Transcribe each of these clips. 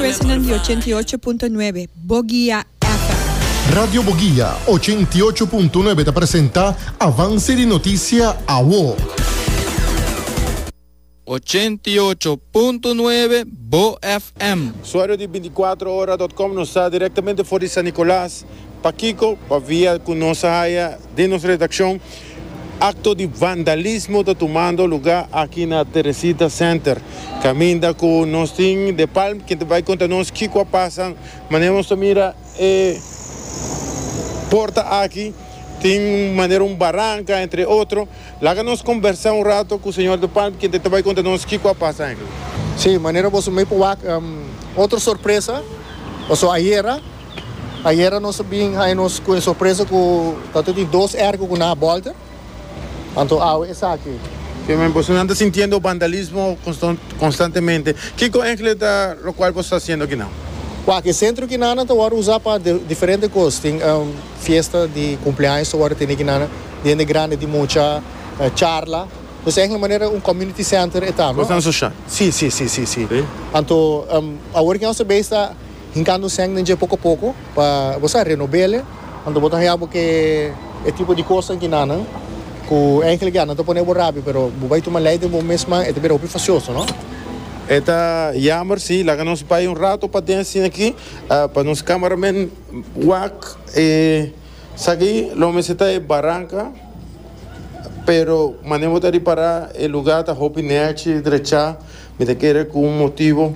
President di ochenta i ocho punto nuebe, Boguia FM. Radio Boguia ochenta i ocho punto nuebe ta presenta Avance di Noticia Awo. Ochenta i ocho punto nuebe, Bo FM. Usuario di binticuatrohora dot com nos ta directamente for di San Nicolas, pakiko? pa via cu nos a haya den nos redaccion Acto di vandalismo ta tumando luga aki na Teresita Center, caminda cu nos tin De Palm quien ta bay conta nos kico a pasa. Manera nos ta mira e porta aki tin un manera un baranca entre otro. Laga nos combersa un rato cu señor De Palm quien ta ta bay conta nos kico a pasa aki. Sí, manera boso mey por wak otro sorpresa, paso ayera. Ayera nos a bin haña nos ku e sorpresa ku ta tur di dos erko ku nan a bòlte. Anto awe esaki. Te men boso nan ta sintiendo vandalismo konstantemente. Kiko ehele ta lokual boso ta hasiendo akinan? Wak, e sentro kinan nan ta wòrdu usá pa diferente kos. Tin fiesta di kumpleaños ta wòrdu tene kinan, diente grandi di mucha, charla. Pues ehele manera un community center e ta. Kosnan sosha. Sí, sí, sí, sí, sí. Sí. Anto awor kinan nos ta bai esta. Hincando sèn den dje poco poco pa bo sa renobele. Anto bo ta haya bo ke e tipo di cos aki na nan cu eigenlijk ya nan ta pone bo rabi pero bo bay tuma ley den bo mes man e ta bira hopi facioso no. E ta jammer si. Laga nos bay un rato pa den asina aki pa nos cameraman wak e saki lo mester ta e baranca pero mane bo ta ripara e lugar ta hopi nerchi drecha mi ta kere cu un motibo.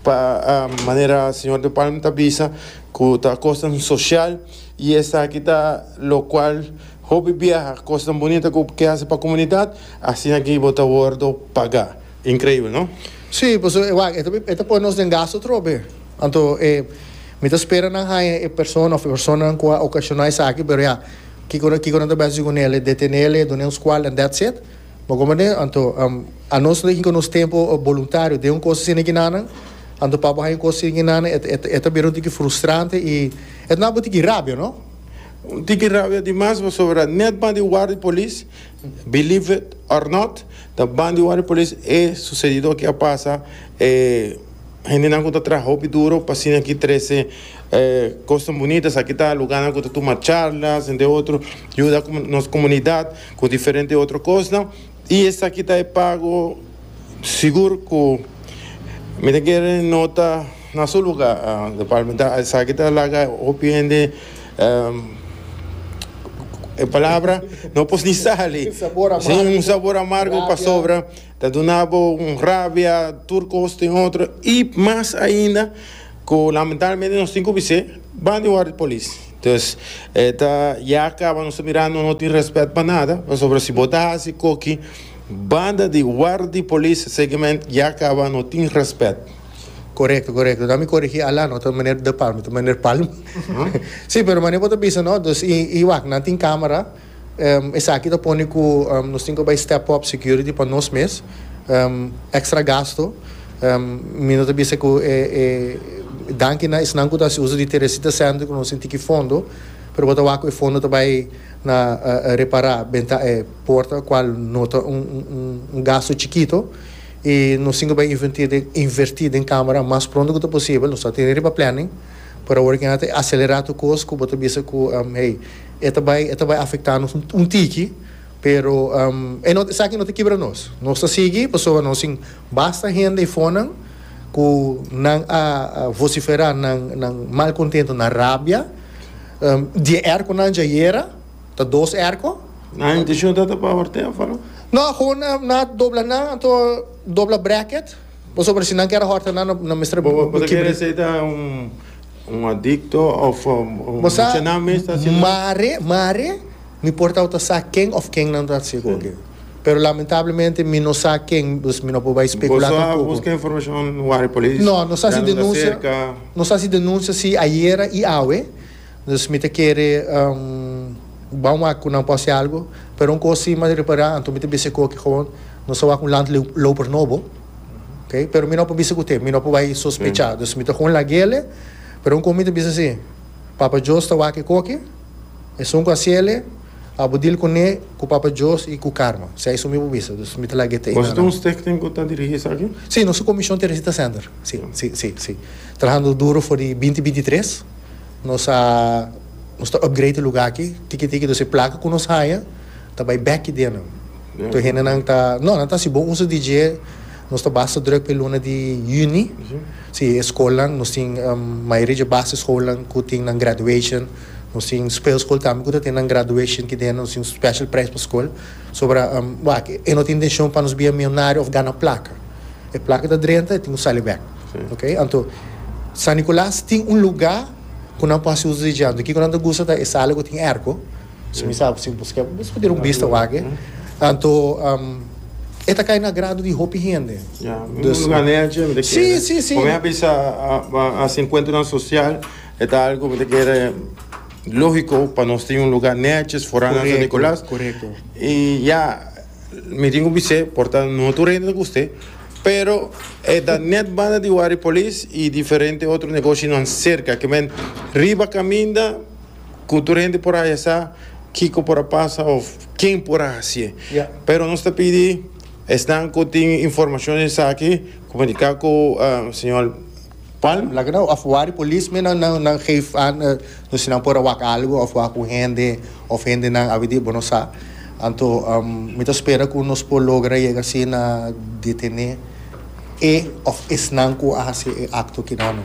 Pa manera señor De Palm ta bisa cu ta cosnan social y esaki ta lo cual hopi biaha cosnan bonita cu ke haci pa comunidad asina aquí bo ta wordo paga. Increibel no? Sí, pasobra e wak e ta pone nos den gasto atrobe. Anto e mi ta spera nan haña e persona of e personanan cu a ocasiona esaki pero ya kico kico nan ta bisa haci cu nele? Detenele, dun'e un scual and that's it? Bo komo den, anto, anos no hinka nos tempo boluntario den un kos asina kinanan, anto pa bo haña un kos asina kinanan e e e ta bira un tiki frustrante i e ta na bo tiki rabia, no? Un tiki rabia di mas pasobra net ban di war di polis, believe it or not, ta ban di war di polis e sucedido aki a pasa, e hendenan ku ta traha hopi duro pa asina aki trese e kosnan bunita, esaki ta lugarnan ku ta tuma charlas ente otro, yuda nos komunidat. cu diferente otro cosnan y esaki ta e pago sigur cu mi ta kere nota na su lugar de parlamentario esaki ta laga hopi hende e palabra no por ni sali si un sabor amargo pasobra. Ta duna bo un rabia, tur cos tin otro y mas ainda cu lamentablemente nos tin cu bis'e ban di worde polis. Entonces e ta ya caba nos ta mira no no tin respet pa nada pasobra si bo ta haci coki banda di worde polis seguement ya caba no tin respet. Corecto corecto ta mi corigi Alan no ta meneer De Palma ta meneer Palma si pero manera bo ta bisa no y y wak nan tin camera. Esaki ta pone ku nos tin ku bai step up security pa nos mes. Extra gasto. Mi no ta bisa ku e danki na esnan ku ta hasi uso di Teresita Center ku nos tin tiki fondo pero bo ta wak ku e fondo ta bai na repara benta e porta kual no ta un gasto chikito i nos tin ku bai inverti den kamera mas pronto ku ta posibel. Nos ta tene riba planning pero aworakina ta aselerá tur kos ku bo ta bisa ku hey. E ta bai e ta bai afecta nos un tiki pero e no esaki no ta kibra nos nos ta sigui pasobra nos tin basta hende e fonan ku nan a vocifera nan nan mal contento nan rabia die erco nan dja yera ta dos erco. Nan intencion ta ta pa Ortega a fala? No aho nan a dobla nan anto dobla bracket pasobra si nan kier a horta nan nan mester. Bo ta kere esei ta un. Un adikto òf Bo sa, mucha nan mes ta hasi lo. mare, mare, no importa bo ta sa ken òf kennan ta hasi goge. Pero lamentablemente mi no sa ken, dus mi no por bai spekulá Boso a tampoko. buska informashon wak di polis? No, nos a hasi Yando ta denunsia, serka? nos a hasi denunsia sí ayera i awe. Dus mi ta kere ban wak ku nan por hasi algu. Pero un kos sí mas repará, anto mi ta bisa e koki, gewoon nos a wak un land loper nobo. ok pero mi no por bisa cu te mi no por bay sospecha dus mi ta con laguele pero un con mi ta bisa si Papa Jos ta wak e coke esun cu hacele abo deal cune cu Papa Jos y cu Carmen si esun mi por bisa dus mi ta lague te Boso ta un stichting cu ta dirigi esaki? Si nos ta comision Teresita Sender si si si si trahando duro for di binti binti tres nos a nos ta upgrade e lugar aki tiki tiki dus e placa cu nos haya ta bay bek ki dena. Tur hendenan ta, No, nan ta hasi bon uso di dje, nos ta basta drùk pa e luna di yüni. Sí, e skolnan, nos tin mayoria dje basischoolnan ku tin nan graduation. Nos tin speelskool tambe ku ta tene nan graduation aki dentro. Nos tin un special prijs pa skol. Sobra, wak, e no ta intenshon pa nos bia milionario òf gana plaka. E plaka ta drenta, e tin ku sali bèk. Ok? Anto, San Nikolas tin un lugá ku nan por hasi uso di dje. Anto, kiko nan ta gusta ta e sala ku tin èrko. Si mi sa ku si buska e mesmu den un bista wak, anto e ta kai na agrado di hopi hende. Ya, un luga nechi mi ta kere. Si, si, si. Ku mi a bisa a hasi enkuentronan sosial e ta algu mi ta kere logiko pa nos tin un luga nechi for San Nicolas. Korekto, korekto. I ya mi tin ku bis'é por ta no tur hende ta gust'é, pero e ta nèt banda di Waripolis i diferente otro negoshinan serka, ke men riba kaminda. cu tur hende por a yesa kico por a pasa of ken por a haci'e. Pero nos ta pidi esnan cu tin informacion di esaki comunica cu Sr. Palm. Laga nan of wak di polis mi nan nan geef aan nos si nan por a wak algo of wak un hende of hendenan abi di bo no sa. Anto mi ta spera cu nos por logra yega si na detene e of esnan cu a haci e acto kinan.